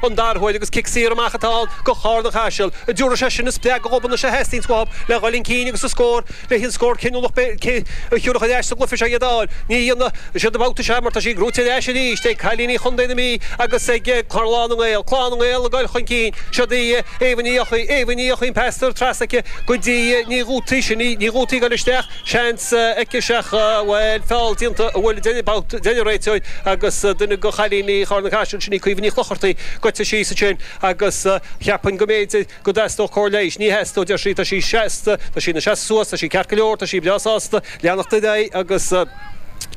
An dara huair agus cic saor amach atá ann go Charna Caiseal. An dtiúrfaidh sé sin an spreagadh dhóibh anois a theastaíonn uathub le dhul chun cinn agus a scór le haon scór cinniúnach beidh aici a thiúrfadh ar ais sa gcluiche seo iad a fháil. Ní dhéanfaidh siad an babhta seo mar tá sí gnóthaithe ar ais arís ag cailíní Chondae na Mí agus ag Clann na nGael. Clann na nGael ag dul chun cinn. Siod í Éabha Ní Eochaidh. Éabha Ní Eochaidh an pas trasna aici go dtí Ní Dhútaigh. Sin í Ní Dhútaigh ag dul isteach. Seans. aici 7 bhuel feall déanta a bhfuil deireadh babhta deir an réiteoir agus duine go chailíní Chárna Caiseal sin í Caoimhe Ní Chlochartaigh goite síos ansin agus cheapainn go mb'fhéidir go dteastódh cóir leighis ní theastódh deir sí tá sí seasta tá sí ina seasamh suas tá sí ceart go leor tá sí breá sásta leanacht ar aghaidh agus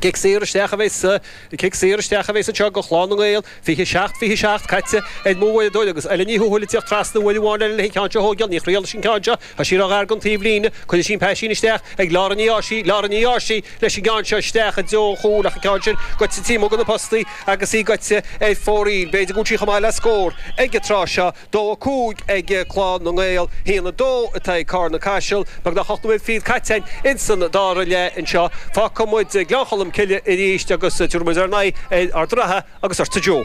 cic saor isteach a bhéas cic saor isteach a bhéas anseo go Clann na nGael 27 27 caite ar m'uaireadóir agus Oilill Ní Thuathail ag tíocht trasna uair amháin eile le haghaidh an ceann seo a thóigeáil Ní Ghriallais an ceann seo Tá sí ró-ghar gon taobh líne, cuireann sí an paisín isteach ag Laura Ní Dhársaigh, Laura Ní Dhársaigh, leis an gceann seo isteach i dtreo an chúil ach an ceann sin goite taobh amuigh go na postaí agus í goite ar fóraoil. B'fhéidir go bhfuil sí chomh maith le scór ag an tráth seo. Dó a cúig ag Clann na nGael, haon a dó atá ag Carna Caiseal, beagnach ocht nóiméad fichead caite in san dara leath anseo. Fágfaidh muid Gleann Cholm Cille arís agus tabharfaidh muid ár n-aghaidh ar Ard an Rátha. Agus ortsa Joe.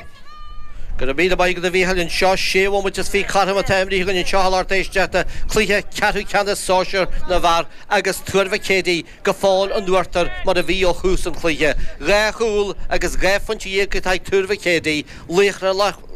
Go raibh míle maith agat a Mhícheáil. Anseo sé bhomaite is fiche cothrom atá imrithe againn anseo a lucht éisteachta cluiche ceathrú ceannais sóisear na bhfear agus Tuar Mhic Éadaigh go fóill in uachtar mar a bhí ó thús an chluiche. Dhá chúl agus dhá phointe dhéag atá ag Tuar Mhic Éadaigh, Laochra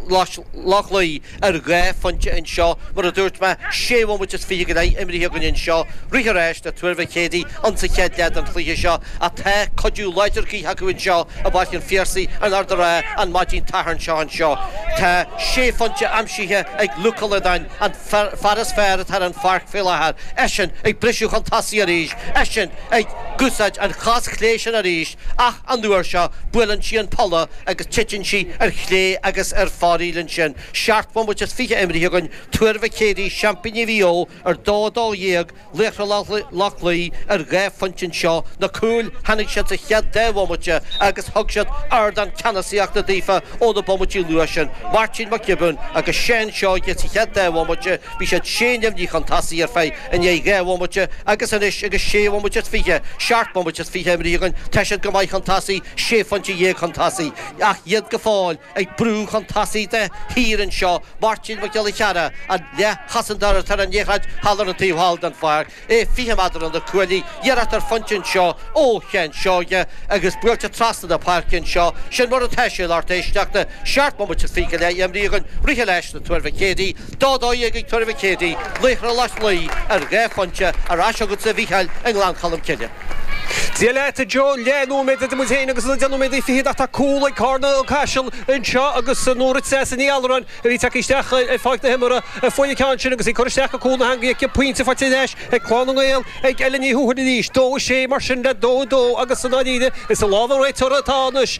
Loch Lao, ar dhá phointe anseo. Mar a dúirt mé, sé bhomaite is fiche go leith imrithe againn anseo. Rith an ráis le Tuar Mhic Éadaigh insa chéad leath den chluiche seo ach tá cuidiú láidir gaoithe acu anseo i bPáirc an Phiarsaigh in Ard an Rátha an maidin tSathairn seo anseo. Tá sé phointe aimsithe ag Luke Ó Loideáin an fear is fearr atá ar an pháirc faoi láthair. Eisean ag briseadh chun tosaigh arís. Eisean ag úsáid an chos chlé sin arís ach. An uair seo, buaileann sí an polla agus titeann sí ar chlé agus ar fóraoil ansin. Seacht mbomaite is fiche imirthe againn, Tuar Mhic Éadaigh, seaimpíní Mhaigh Eo ar dó a dó dhéag, Laochra Loch Lao ar dhá phointe anseo, na cúil, tháinig siad sa chéad deich bhomaite agus thug siad ardán ceannasaíochta daofa ó na bomaití luath sin, Máirtín Mac Giobúin agus Seán Seoighe sa chéad deich bhomaite, bhí siad sé neamhní chun tosaigh ar feadh I ndiaidh dhá bhomaite agus anois agus sé bhomaite is fiche, seacht mbomaite is fiche imrithe againn, tá siad go maith chun tosaigh, sé phointe dhéag chun tosaigh, ach iad go fóill ag brú chun tosaigh de shíor anseo, Máirtín Mac Giolla Cheara, an leathchosantóir ar an liathróid thall ar an taobh thall den pháirc, é fiche méadar ó na cuaillí, iarracht ar phointe anseo ó Sheán Seoighe agus buailte trasna na páirce anseo, sin mar atá sé, a lucht éisteachta, seacht mbomaite is fiche go leith imrithe againn, rith an ráis le Tuar Mhic Éadaigh, Dó a dó dhéag ag Tuar Mhic Éadaigh, Laochra Loch Lao ar dhá phointe ar ais agat-sa a Mhícheáil i nGleann Cholm Cille. Dia leat a Joe, leath nóiméad idir muid féin agus na deich nóiméad fichead ach tá cúl ag Carna Caiseal anseo agus Nóra Treasa Ní Allúráin a bhí tagtha isteach ar Pháirc na hImeartha a fuair an ceann sin agus í curtha isteach go cúl na heangaí aici pointe faighte ar ais ag Clann na nGael ag Ellen Ní Thuathail arís, dó a sé mar sin le dó a dó agus i ndáiríre is i lámha an réiteora atá anois.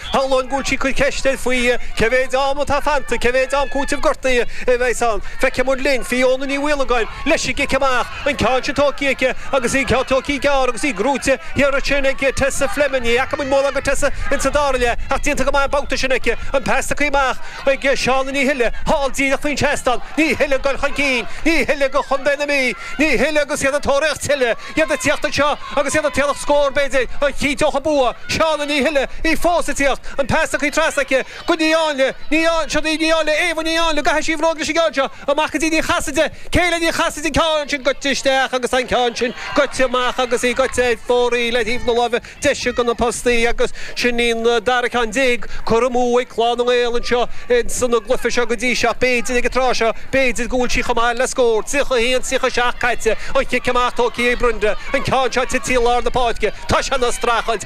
Shamhlóinn go bhfuil sí ag cur ceist air faoi cé mhéid am atá fanta, cé mhéid am cúitimh gortaithe a bheidh's ann. Feicfimid linn. Fiona Ní Mhaolagáin, leis an gcic amach, an ceann sin tugthaí aici agus í an ceann tugthaí gearr agus í gnóite thiar ansin ag Tessa Fleming. Ní fhaca muid mórán go Tessa ins an dara leath ach déanta go maith an babhta sin aici. An pas tugthaí amach ag Shauna Ní Thuile, thall díreach faoin seastán. Ní Thuile ag dul chun cinn. Ní Thuile go Chontae na Mí. Ní Thuile agus iad ag tóraíocht tuilleadh. Iad ag tíocht anseo agus iad ag tóraíocht scór, b'fhéidir, a chinnteodh an bua? Shauna Ní Thuile, í fós ag tíocht, an pas tugthaí trasna aici, go Ní Áinle, Ní Á, siod í Ní Áinle, Éabha Ní Áinle, gabhfaidh sí bróg leis an gceann seo, amach go dtí Ní Chasaide, Kayleigh Ní Chasaide, an ceann sin goite isteach agus an ceann sin goite amach agus í goite ar fóraoil ar thaobh na láimhe deise go na postaí agus sin í an dara ceann déag curtha amú ag Clann na nGael anseo ins an gcluife seo go dtí seo ach b'fhéidir ag an tráth seo b'fhéidir go bhfuil sí chomh maith le scór. 31, 37 caite, an cic amach, tógthaí ag Brenda, an ceann seo tití i lár na páirce, tá sé ina streachailt,